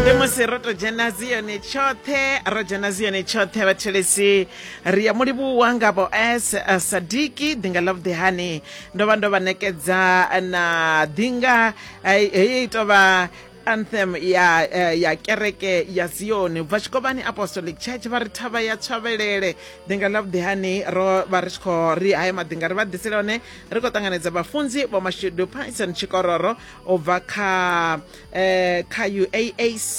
ndi musi ro to dzhena ziyoni tshoṱhe ro dzhena ziyoni tshoṱhe vhathelesi ri ya mulivhuwa nga vho s eh, sadiki ḓinga love the honey ndo vha ndo vha nekedza na ḓinga eh, heyi tou vha anthem ya eh, ya kereke ya zioni ubva tshikovhani apostolic church vha ri thavha ya tshavelele ḓinga ḽa vhuḓihani ro vha ri tshi khou ri haye maḓinga ri vha ḓisela one ri khou ṱanganedza vhafunzi vho mashudu pyson tshikororo u bva kha eh, kha uaac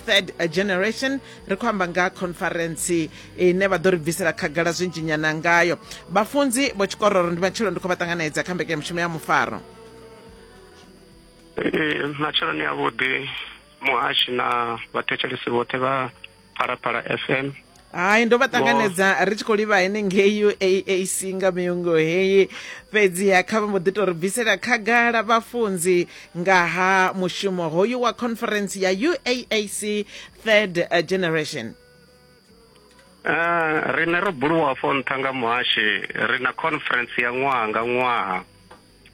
third generation ri khou amba nga conference ine vha ḓo ri bvisela khagala zwinzhinyana ngayo vhafunzi vho tshikororo ndi matshelo ndi khou vha ṱanganedza kha mbekanyamushumo ya mufaro eh, matsheloni avhuḓi muhashi na vhathetshelesi vhoṱhe vha phalaphala fm hai ndo vha ṱanganedza ri tshi khou livha henengei uaac nga miungo heyi fhedziha kha vha mbo ḓi tou ri bvisela khagala vhafunzi nga ha mushumo hoyu wa conference ya uaac third uh, generation Uh, rine ro buluwa fo nṱha nga muhashi ri na conference ya ṅwaha nga ṅwaha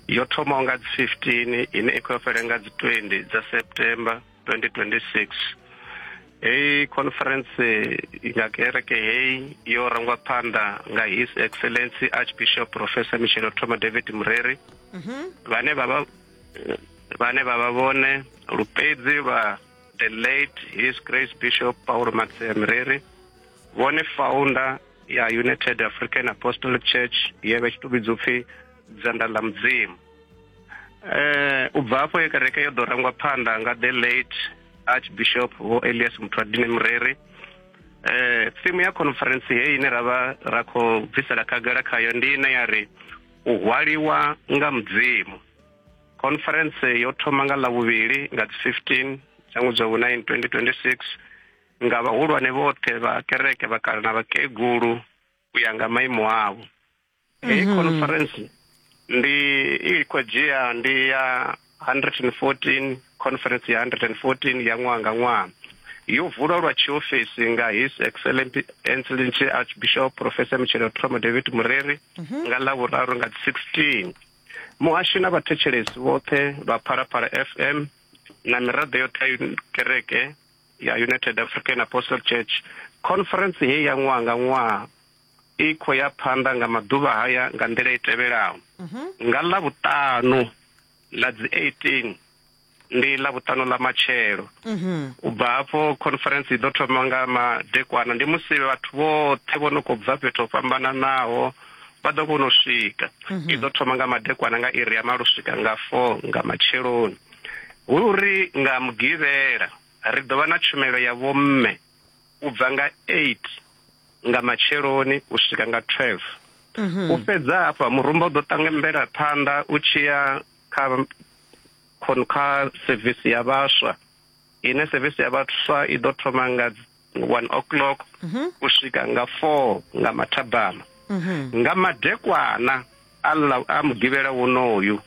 yo thomaho nga dzi 15 ine i khou yo fhele nga dzi 20 dza september 2026 heyi conference ya kereke heyi yo rangwa phanḓa nga his excellency archbishop professor michelo thoma david mureri mhm. vhane vha vha vhane vha vha vhone lupedzi lwa the late his grace bishop paulo maxia mureri vhone founder ya united african apostolic church ye vha tshi to vhidzwa upfi dzanda ḽa mudzimu eh u bva afho ye kereke yo ḓo rangwa phanḓa nga the late archbishop vho elias mutwadini mureri eh thimu ya conference heyi ine ra vha ra khou bvisela khagala khayo ndi ine ya ri u hwaliwa nga mudzimu conference yo thoma nga ḽavhuvhili nga dzi 15 dza ṅwedzi wa vhu-9 2026 nga vhahulwane vhoṱhe vha kereke vhakala na vhakegulu u ya nga maimo avho heyi mhm. conference ndi i khou dzhia ndi ya 114 conference ya 114 ya ṅwaha nga ṅwaha yo vulwa lwa tshiofisi nga his excellent excellent archbishop professor mutshelo tromo david mureri mhm. nga ḽa vhuraru nga 16 muhashi na vhathetshelesi vhoṱhe vha phalaphala fm na miraḓo yoṱhe ya kereke ya united african apostle church conference heyi ya ṅwaha nga ṅwaha i khou ya phanḓa nga maḓuvha haya nga nḓila i tevhelaho mhm. nga ḽa vhuṱanu ḽa dzi 18 ndi ḽa vhuṱanu ḽa matshelo mhm. u bva hafho conference i ḓo thoma nga madekwana ndi musi vhathu vhoṱhe vho no khou bva fhethu ho fhambananaho vha ḓo kona u swika mhm. i ḓo thoma nga madekwana nga iri ya malo swika nga four nga matsheloni hu uri nga mugivhela ri ḓo vha na tshumelo ya vhomme u bva nga 8 nga matsheloni u swika nga 12 u fhedza hafha murumba u ḓo ṱangambela phanḓa u tshiya kha khon- kha sevisi ya vhaswa ine sevisi ya vhaswa i ḓo thoma nga 1 o'clock u swika nga 4 nga mathabama nga madekwana Allah a mugivhela wonoyu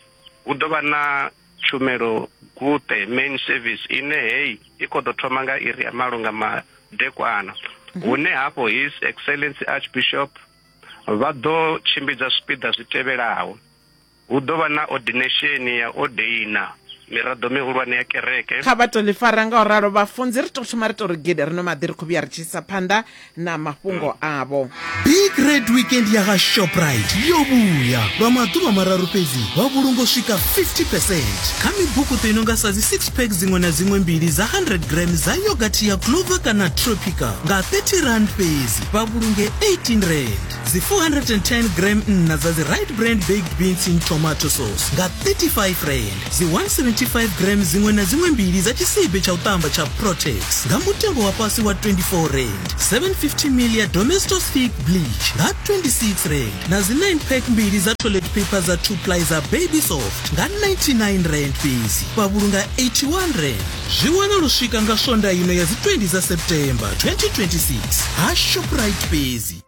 hu ḓo vha na tshumelo guṱe main service ine heyi i khou ḓo thoma nga iri ya malo nga madekwana mhm. hune hafho his excellency archbishop vha ḓo tshimbidza zwipiḓa zwi tevhelaho hu ḓo vha na ordination ya odeina miraḓo mihulwane ya kereke kha vha to ḽi fara nga u ralo vhafunzi ri to thoma ri to ri gede ri no maḓi ri khou vhuya ri tshi isa phanḓa na mafhungo avho big red weekend ya ha shoprite yo vhuya lwa maḓuvha mararu fhedzi wa vhulungo swika 50 percent kha mibukuṱo i no nga sa dzi 6 pack dziṅwe na dziṅwe mbili dza 100 gram dza yogathi ya clover kana tropica nga 30 rand fhedzi vha vhulunge 18 rand dzi 410 gram nna dza dzi right brand baked beans in tomato sauce nga 35 rand dzi 175 gram dziṅwe na dziṅwe mbili dza tshisibe tsha u ṱamba tsha protex nga mutengo wa fhasi wa 24 rand 750 ml ya domestos thick bleach nga 26 rand na dzi 9 pack mbili dza toilet paper dza 2 ply dza baby soft nga 99 rand fhedzi vha vhulunga 81 rand zwi wana lu swika nga swonda ino ya dzi 20 dza september 2026 ha shoprite fhedzi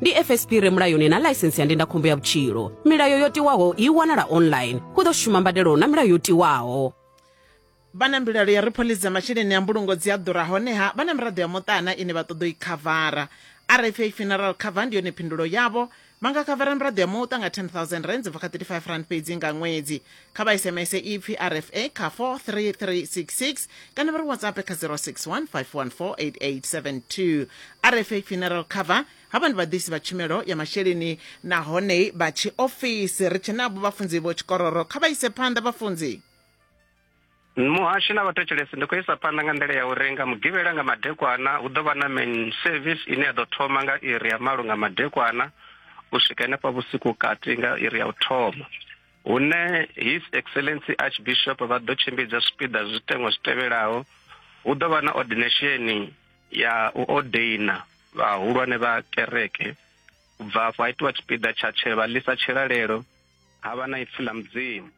ndi fsp re mulayoni na ḽaisensi ya ndindakhombo ya vhutshilo milayo yo tiwaho i wanala online hu ḓo shuma mbadelo na milayo yo tiwaho vha na mbilaelo ya ri phoḽisi dza masheleni a mbulungo dzi a ḓura honeha vha na miraḓo ya muṱana ine vha ṱoḓa u i khavara rfa funeral cover ndi yone phindulo yavho vha nga khavara miraḓo ya muṱa nga 10000 rands bva kha 35 rand fhedzi nga ṅwedzi kha vha sms ipfi rfa kha 43366 kana vha ri whatsapp kha 061 514 rfa funeral cover havha ndi vhaḓisi vha tshumelo ya masheleni nahone vha tshiofisi ri tshe navho vhafunzi vho tshikororo kha vha ise phanḓa vhafunzi muhasho na vhathetshelesi ndi khou isa phanḓa nga nḓila ya uri nga mugivhela nga madekwana hu ḓo vha na main service ine ya ḓo thoma nga iri ya malo nga madekwana u swika henefha vhusiku kati nga iri ya u thoma hune His Excellency Archbishop vha ḓo tshimbidza zwipiḓa zwiteṅwa zwi tevhelaho hu ḓo vha na ordination ya u ordaina vhahulwane vha kereke u bva afho ha itiwa tshipiḓa tsha tshevha ḽisa tshilalelo ha vha na ipfi ḽa mudzimu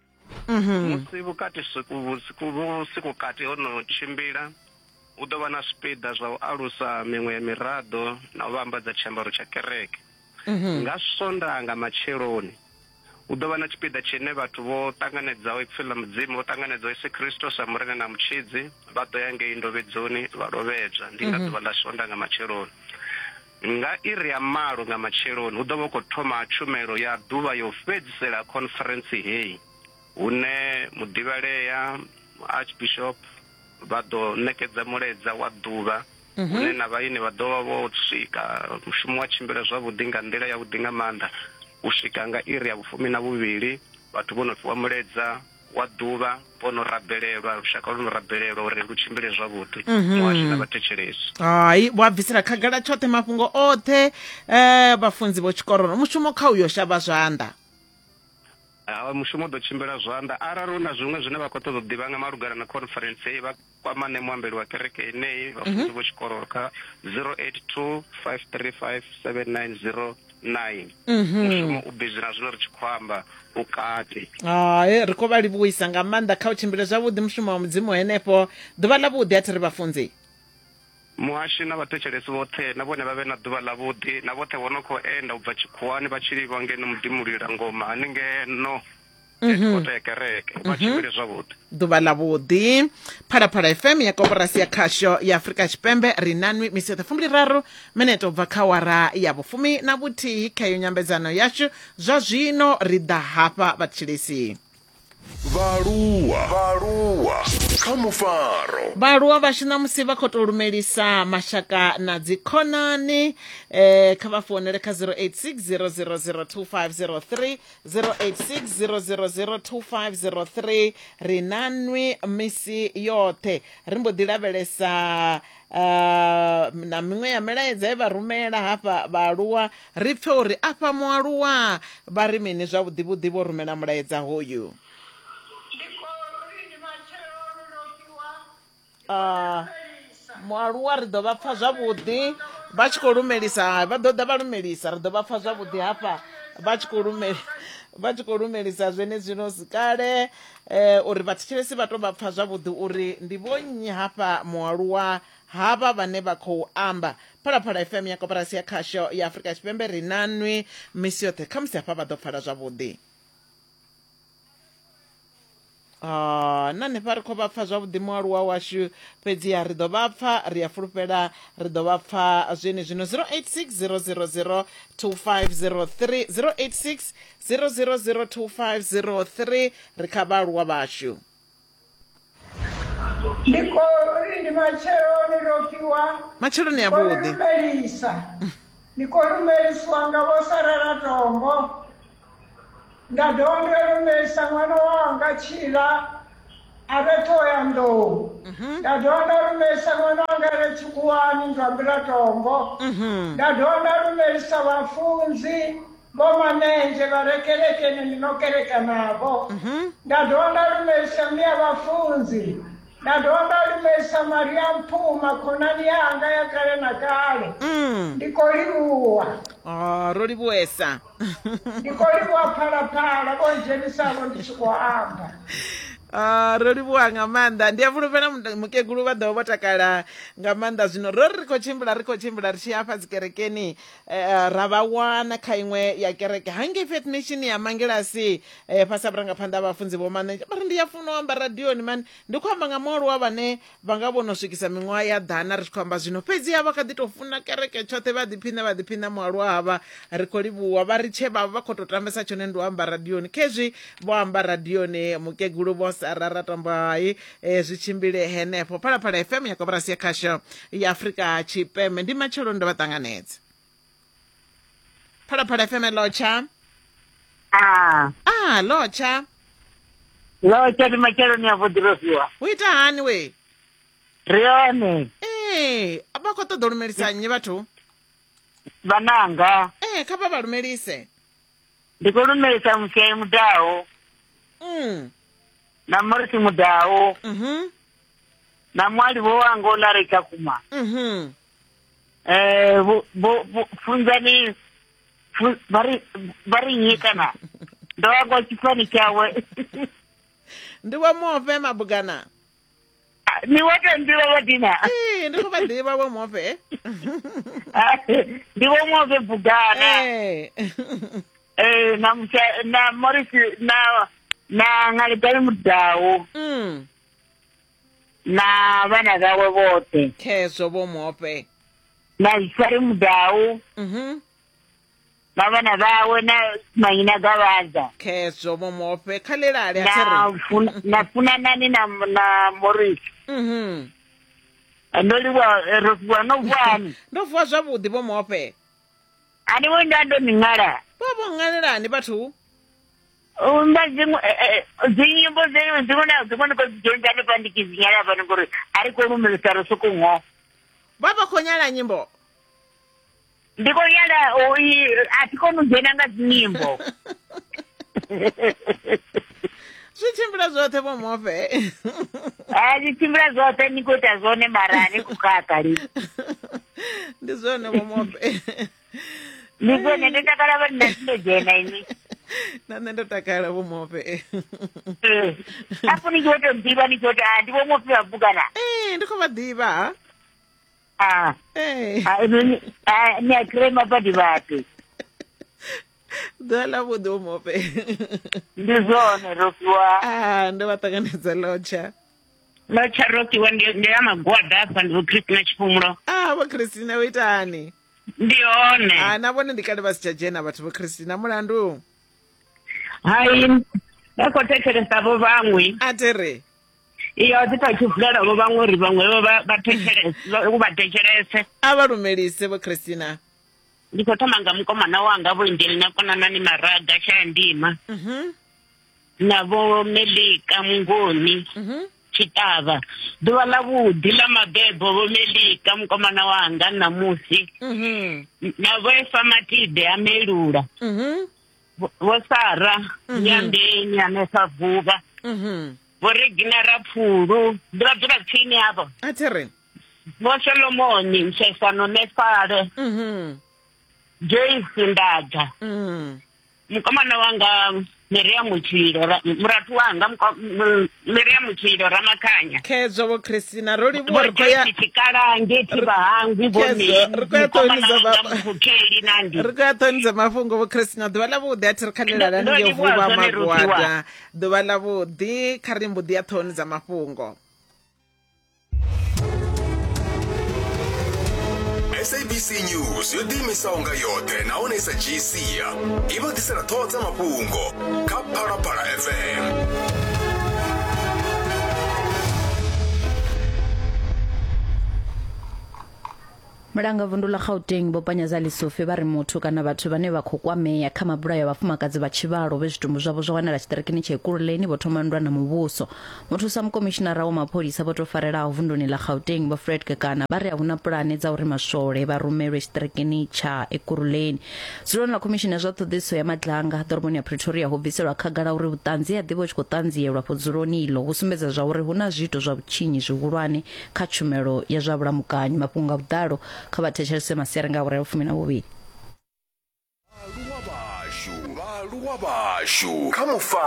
mhm. musi vhukati vhusiku kati ho no tshimbila hu ḓo vha na zwipiḓa zwa u alusa miṅwe ya miraḓo na u vhambadza tshiambaro tsha kereke mhm. nga swondaha nga matsheloni Hu ḓo vha na tshipiḓa tshine vhathu vho ṱanganedzaho ipfi ḽa Mudzimu, vho ṱanganedzaho Yesu Kristo sa Murena na Mutshidzi, vha ḓo ya ngei ndovhedzoni vha lovhedzwa. Ndi nga ḓuvha ḽa Sonda nga matsheloni. Nga iri ya malo nga matsheloni hu ḓo vha hu khou thoma tshumelo ya ḓuvha ya u fhedzisela ha khonferentsi heyi, hune muḓivhalea, Archbishop, vha ḓo ṋekedza mulaedza wa ḓuvha. hune na vhaeni vha ḓo vha vho swika. Mushumo wa tshimbila zwavhuḓi nga nḓila yavhuḓi nga maanḓa u swika nga iri ya vhufumi na vhuvhili vhathu vho no fhiwa muledza wa ḓuvha vho no rabelelwa lushaka lwo no rabelelwa uri lu tshimbile zwavhuḓi mhm. muhasho na vhathetshelesi hai vha bvisela khagala tshoṱhe mafhungo oṱhe um vhafunzi vho tshikororo mushumo kha uyo shavha zwanḓa mushumo ḓo tshimbila zwanḓa arali hu na zwiṅwe zwine vha khou ṱoḓa u ḓivha nga malugana na conference heyi kwamane muambeli wa kereke yeneyi vhafunzi mhm. vho tshikololo kha 082 535 790 9 mhm. mushumo u bizi na zwino ri tshi khou amba u kati hai ri khou vha livhuisa nga maanḓa kha u tshimbile zwavhuḓi mushumo wa mudzimu henefho ḓuvha ḽa vhuḓi a thi ri vhafunzi muhashi na vhathetshelesi vhoṱhe na vhone vha vhe na ḓuvha ḽavhuḓi na vhoṱhe vho no khou enda u bva tshikhuwani vha tshi livha ngeno muḓimulila ngoma haningeno headquarter mhm. ya kereke vha mhm. tshimbile zwavhuḓi ḓuvha ḽa vhuḓi phalaphala fm ya koporasi ya khasho ya afurika tshipembe ri na nwi misi yoṱhe fumbili raru minete ubva kha wara ya vhufumi na vhuthihi kha yo nyambedzano yashu zwa zwino ri ḓa hafha vhatshilisi vhaaluwa vhaaluwa kha mufaro vhaaluwa vhashu ṋamusi vha khou tou lumelisa mashaka na dzikhonani um kha vha founele kha 086 0002503 0860002503 ri na nwi misi yoṱhe ri mbo ḓi lavhelesa uh, na miṅwe ya milaedza ye vha rumela hafha vhaaluwa ri pfe uri afha mualuwa vha ri mini zwavhuḓi vhuḓi vho rumela mulaedza hoyu ah, mualuwa ri ḓo vha pfa zwavhuḓi vha tshi khou lumelisa vha ḓo ḓa vha lumelisa ri ḓo vha pfa zwavhuḓi hafha vha tshi khou lumela vha tshi khou lumelisa zwenezwino kale eh, uri vhathetshelesi vha to vha pfa zwavhuḓi uri ndi vho nnyi hafha mualuwa hava vhane vha khou amba phalaphala fm ya koporasi ya khasho ya afurika tshipembe ri na nwi misi yoṱhe khamusi hafha vha ḓo pfala zwavhuḓi Oh, na hanefha ri khou vha pfa zwavhuḓi mualuwa washu fhedziha ri ḓo vha pfa ri a fulufhela ri ḓo vha pfa zwene zwino 086000 2503 086000 2503 ri kha vhaaluwa vhashu ndi kori ndi matsheloni ro fhiwa matsheloni avhuḓi lumelisa ndi khou lumelisiwa nga vho sarela tombo nda dovha nda lumelisa ṅwana wanga tshila a re ṱhoya nḓou mhm. nda dovha nda lumelisa ṅwana wanga re tshikhuwani nzwambila tombo mhm. nda dovha nda lumelisa vhafunzi Mama Nenje varekerekene ndinokerekanavo mm-hmm. ndadova ndalumerisa mia vafunzi ndadova ndalumerisa mari ya mpuma khonani yanga ya kale na kale mm. ndikolivuwa oh, ro livuwesa ndikolivuwa phalaphala vo njenisavo ndi tshi kho amba Ah, ro livhuwa nga maanḓa ndi a fulufhela mukegulu vha ḓovha vho takala nga maanḓa zwino ro ri ri khou tshimbila ri khou tshimbila ri tshi afha dzikerekeni Eh, ra vha wana kha iṅwe ya kereke hangei fetnation ya mangelasi eh, fhasi ha vhurangaphanḓa ha vhafunzi vho mane vha ri ndi ya funa u amba radioni mani ndi khou amba nga mualuwa vhane vha nga vhono swikisa miṅwaha ya ḓana ri tshi khou amba zwino fhedzi ha vha kha ḓi tou funa kereke tshoṱhe vha ḓiphina vha ḓiphina mualuwa havha ri khou livhuwa vha ri tshe vhavha vha khou tou tambesa tshone ndi u amba radioni khezwi vho amba radioni mukegulu vho sarara tambo hai e, zwi tshimbile henefho phalaphala fm ya koporasi ya khasho ya afurika tshipembe ndi matshelo ndo vha ṱanganedza phalaphala fm lotsha Ah, ah lotsha lo tshati matsheloni a vhuḓirofiwa u ita hani we ri hone ee vha khou ṱoḓa u lumelisa nnyi vhathu vhananga ee kha vha vha lumelise ndi khou lumelisa mushayi mudaho mm. na morisi mudau Mhm. na mwali vho wango la ri tsha kuma Mhm. eh vho vho- vho- funzani fu- vha ri vha ri nyi kana ndo ya kwa tshifani tshawe ndi vho mofe mabugana ni wo to nḓivha vho dina Ee, ndi khou vha ḓivha vho mofe ndi vho move bugana Eh. ee na musa na morisi na na ngaledani mudawu mm. na vhana vhawe vhoṱhe khezwo vho mope na zwisari mudawu mm -hmm. na vhana vhawe na manyina gavhaza khezwo vho mope kha lelale na funanani na na morisi mm -hmm. ndo livha eh, ro vuwa no vuwani ndo vuwa zwavhuḓi vho mope a ni vhoni nda ndo ni ṅwala vho vho ṅwalelani vhathu nda dziṅwe eh, eh, dzinyimbo dzeo dziṅwe na dziṅwe ni khou dzi dzhenisa hanefha ndi tshi dzi nyala hafhani ngori a ri khou lumelisa ri soko ngo vha vha khou nyala nyimbo ndi khou nyala a thi koni u dzhena nga dzinyimbo zwi tshimbila zwoṱhe vho mofe a zwi tshimbila zwoṱhe ni khou ita zwone mara ni khou khakha li ndi zwone vho mofe ndi zwone ndo takala vha nna ndo dzhena ini na nṋe ndo takala vho mofe afho ni tshi vho to ḓivha ni tshi vho to ndi vho mofe vha bukana ee ndi khou vha ḓivha Ah. Hey. Ah, ni ah, ni a kry mapadi vhape. ḓuvha ḽa vhuḓi u mope ndi zwone rofiwa a ah, ndo vha ṱanganedza lotsha lotsha rofiwa ndi ya magwada afha ndi vho christina tshifhumulo a ah, vho christina u itani ndi hone a ah, na vhone ndi kale vha si tsha dzhena vhathu vho christina mulandu hai vha khou thetshelesa vho vhaṅwe a tere iyo dzi tou tshivulela vho vhaṅwe uri vhaṅwe u vha thetshelese a vha lumelise vho christina ndi khou thoma nga mukomana wanga vho injeli na konanani maraga shaya ndima mhm. na vho melika mungoni mhm. tshitavha ḓuvha ḽa vhuḓi ḽa mabebo vho melika mukomana wanga ṋamusi mhm. na vho efa matide a melula Vho- Vho Sara Nyandeni hanefha Vuvha. Mhm. Vho Regina Rapfulu. Ndi vha dzula tsini havho. a thi ri Vho Solomoni Mshesano Nefale. Mhm. Joyce Ndadza. Mhm. mukomana wanga Miriam Tshilo ra- murathu wanga muko- mu- miriamu tshilo ramakhanya khedzo vho christina ro livhuwa ri khoya tshikalange thivha hangwi vhoneri khou ya ṱhonisa vhamukheli nandi ri khou ya ṱhonisa mafhungo vho christina ḓuvha ḽa vhuḓi a thi ri khanelela ni yo vhuvha magwada ḓuvha ḽa vhuḓi kha ri mbuḓi ya ṱhonisa mafhungo sabc news yo ḓiimisaho nga yoṱhe nahone sa gc i vha ḓisela ṱhoho dza mafhungo kha phalaphala fm Mulanga vundu ḽa Gauteng Vho Panyaza Lesufi vha ri muthu kana vhathu vhane vha khou kwamea kha mabulayo a vhafumakadzi vha tshivhalo vhe zwitumbu zwavho zwa wanala tshiṱirikini tsha Ekurhuleni vho thoma nndwa na muvhuso. Muthusa mukomishinara wa mapholisa vho tou farelaho vunduni ḽa Gauteng Vho Fred Kekana vha ri a hu na pulane dza uri maswole vha rumelwe tshiṱirikini tsha Ekurhuleni. Dzuloni ḽa khomishini ya zwa ṱhoḓisiso ya madlanga ḓoroboni ya Pretoria ho bviselwa khagala uri vhuṱanzi ha ḓivha hu tshi khou ṱanzielwa afho dzuloni iḽo vhu sumbedza zwa uri hu na zwiito zwa vhutshinyi zwihulwane kha tshumelo ya zwa vhulamukanyi mafhungo nga vhuḓalo kha vha thetshelese masiari nga awara ya vhufumi na vhuvhili vhaaluwa vhashu kha mufa